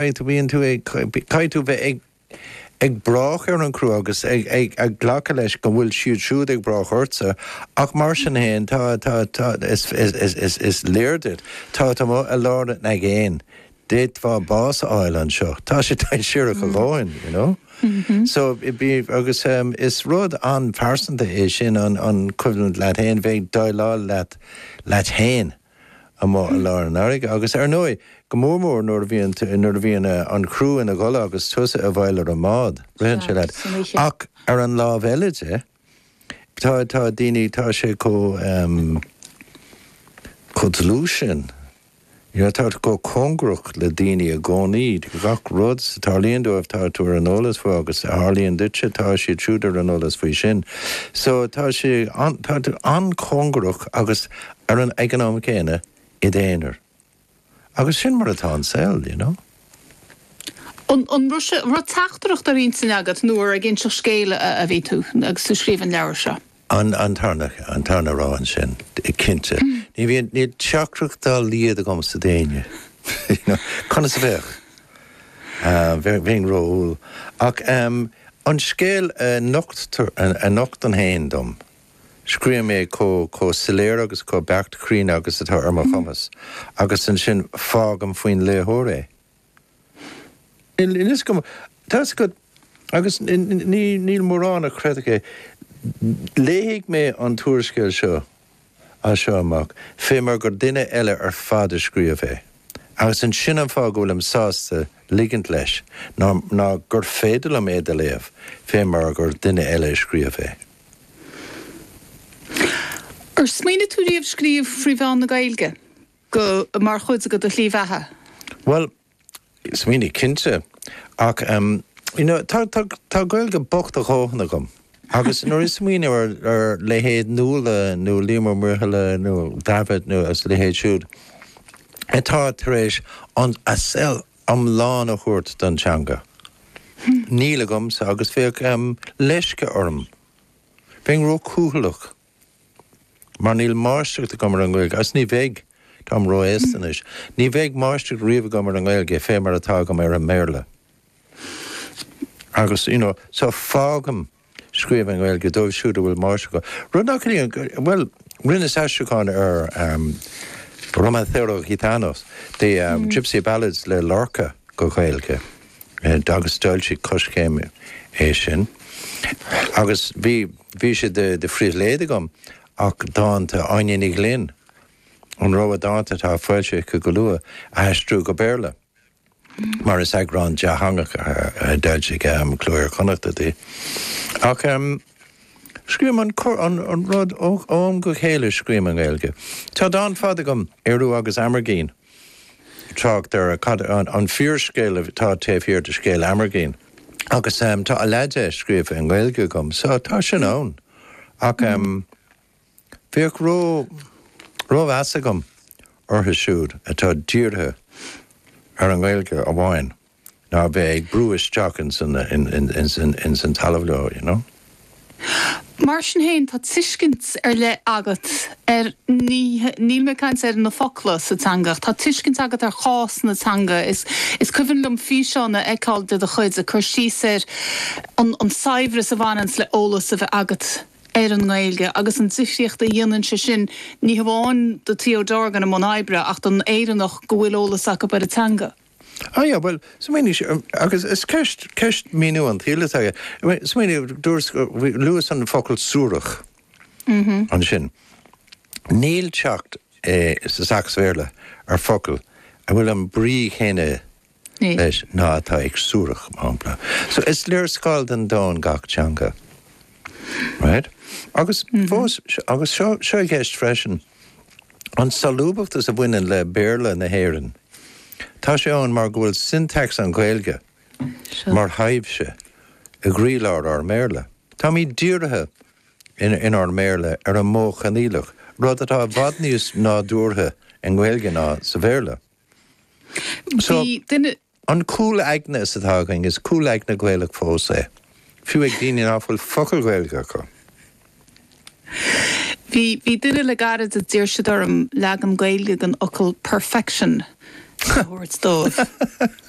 Caithfidh tú bheith ag brath ar an gcriú agus ag glacadh leis go bhfuil siad siúd ag brath ortsa ach mar sin fhéin tá is léir duit tá tá tú i lár an aigéin d'fhéadfá bás a fháil anseo tá sé dainséarach a dhóthain you know so agus is rud an-phearsanta é sin an coimhlint leat fhéin bheith ag déileáil leat fhéin. amuigh i lár na farraige agus, ar ndóigh, go mór mór nuair a bhíonn, nuair a bhíonn eh, an criú ina gcodladh agus tusa i bhfeighil ar an mbád, ritheann sé leat. Ach ar an lámh eile de, tá, tá daoine, tá sé chomh ehm, chomh dlúth sin, you know, tá tú chomh cóngarach le daoine i gcónaí, gach rud a tharlaíonn dóibh tá tú ar an eolas faoi agus a tharlaíonn duitse tá siad siúd ar an eolas faoi sin. So tá sé an, tá tú an-chóngarach agus ar an nóiméad céanna i d'aonar. Agus sin mar atá an saol, d'you know? An raibh sé, an raibh teachtaireacht ar intinn agat nó ar ag inseacht scéil a bhí tú agus tú ag scríobh an leabhar seo? An, an tarna, an tarna rogha ansin, cinnte. Ní bhíonn, níl teachtaireacht dá laghad agamsa d'éinne, d'you know? Conas a bheadh? Bheinn ró-umhal. Ach an scéal a nocht tú, a nochtann é féin dom. Scríobhaim é chomh, chomh soiléir agus chomh beacht cruinn agus atá ar mo chumas, agus ansin fágaim faoin léitheoir é. Níl a fhios agam, tá a fhios agat, agus ní, níl mórán a chreidfeadh é, léifidh mé an t-úrscéal seo as seo amach, fé mar gur duine eile ar fad a scríobh é, agus ansin an fáth go bhfuilim sásta ligint leis ná, ná gur féidir liom é do léamh fé mar gur duine eile a scríobh é. Ar smaoinigh tú riamh scríobh trí mheán na Gaeilge, go, mar chuid de do shlí bheatha? Bhuel, smaoinigh cinnte. Ach em, you know, tá, tá, tá Gaeilge bocht a dhóthain agam. Agus nuair a smaoinim ar, ar leithéid Nuala nó Liam Ó Muirthile nó Davitt nó a leithéid siúd atá tar éis an, a saol iomlán a thabhairt don teanga. Níl agamsa agus bheadh leisce orm. Bheinn ró-chúthaileach. Mar níl máistreacht agam ar an nGaeilge agus ní bheidh. Táim ró-aosta anois. Ní bheidh máistreacht riamh agam ar an nGaeilge fé mar atá agam ar an mBéarla. Agus, you know, so fágaim. Scríobh i nGaeilge dóibh siúd a bhfuil máistreacht acu, rud nach ligeann go, bhuel, rinneas aistriúchán ar Romancero Gitano, The Gypsy Ballads le Lorca go Gaeilge agus d'fhoilsigh Coiscéim é sin agus bhí, bhí sé de phribhléid agam ach dánta Áine Ní Ghlinn, an rogha dánta atá á fhoilsiú aici go luath, a aistriú go Béarla. mar is eagrán dátheangach a d'fhoilsigh Cló Iar-Chonnachta di. Ach scríobhaim an corr-rud ó am go chéile scríobhaim i nGaeilge. Tá dán fada agam, Ériu agus Amergin, trácht ar cad an fíorscéal atá taobh thiar de scéal Amergin. Agus tá a leath de scríofa i nGaeilge agam so tá sin ann. Ach. Bheadh rómheas agam orthu siúd atá dírithe ar an nGaeilge amháin ná a bheith ag brú isteach ins an talamh leo, you know. Mar sin féin, tá tuiscint ar leith agat ar, níl mé ag caint ar na focla sa teanga, ach tá tuiscint agat ar chás na teanga. Is cuimhin liom físeán a fheiceáil de do chuid ag cur síos ar an saibhreas a bhaineanns le eolas a bheith agat, ar an nGaeilge agus an difríocht a dhéanann sé sin, ní hamháin do Theo Dorgan i mbun oibre ach don Éireannach go bhfuil eolas acu ar an teanga. Á yeah, bhuel, smaoinigh sé, agus is ceist, ceist míniú an tsaoil atá aige. Smaoinigh, do luas an focal suarach ansin. Níl teacht sa Sacs-Bhéarla ar focal a bhfuil an brí chéanna leis ná atá ag suarach, mar shampla. So, is léarscáil den domhan gach teanga. Right? Agus fós, agus seo, seo i gceist freisin, an solúbachtas a bhaineann le Béarla na hÉireann, tá sé ann mar go bhfuil syntax an Ghaeilge mar thaibhse i gcroílár ár mBéarla. Táimid dírithe in, inár mBéarla ar an modh coinníollach, rud atá i bhfad níos nádúrtha i nGaeilge ná sa Bhéarla. So, an cúl aigne seo atá againn, is cúl aigne Gaelach fós é, fiú ag daoine ná fuil focal Gaeilge acu. Bhí duine le gairid a d'iarr siad orm leagan Gaeilge den fhocal 'perfection' a thabhairt dóibh.